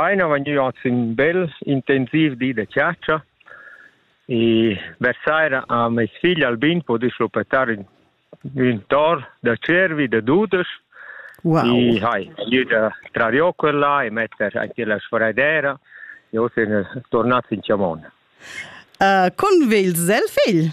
Ei non vegniu aunc sin bel intensiv di de chatscha e vers saira ha meis figl Albin podiu schluppettar ün, ün tor da cervi da dudesch wow. e hai vegniu da trar giò quella e metter anche la sfraidera e oz ein tornats in chamon. Uh, con vegl el figl?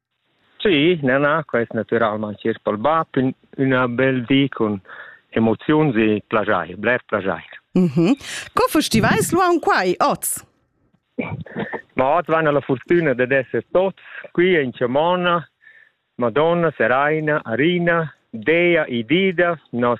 Sì, na, na, quest natüralmaing chi's palba ün üna bel di cun emoziuns e plaschair, bler plaschair. Mhm. Co festivais l'uaun quai oz? Ma oz van la furtüna dad esser tots qui in Chamona, Madonna, Seraina, Arina, Dea, Idida, nos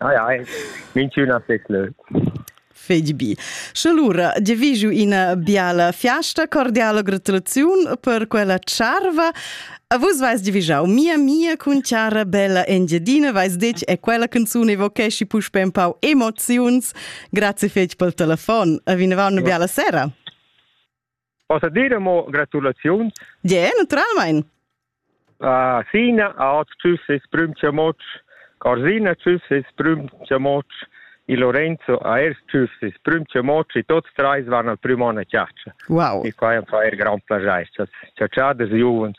Ah ja, minchüna fes lö. Fedi bi. Sche lura giaviju ina biala fiasta, cordiala gratulaziun per quella charva. A vus vais giavijau mia mia cun chara bella Engiadina, vais detg è quella canzuna evochesci puspe un pau emoziuns. Grazie fetg pel telefon. A vinavau una biala sera. Possa dire mo gratulaziuns? Ja, naturalmein. Uh, Sina, Aot, tschüss, es prüm chamoc. Corsina, tschüss, es prüm chamoc. E Lorenzo, a ers tschüss, es prüm chamoc. E tots treis van al prüm on a Wow. E qua è un fa er gran plagiais. Ciao, ciao, des Juvens.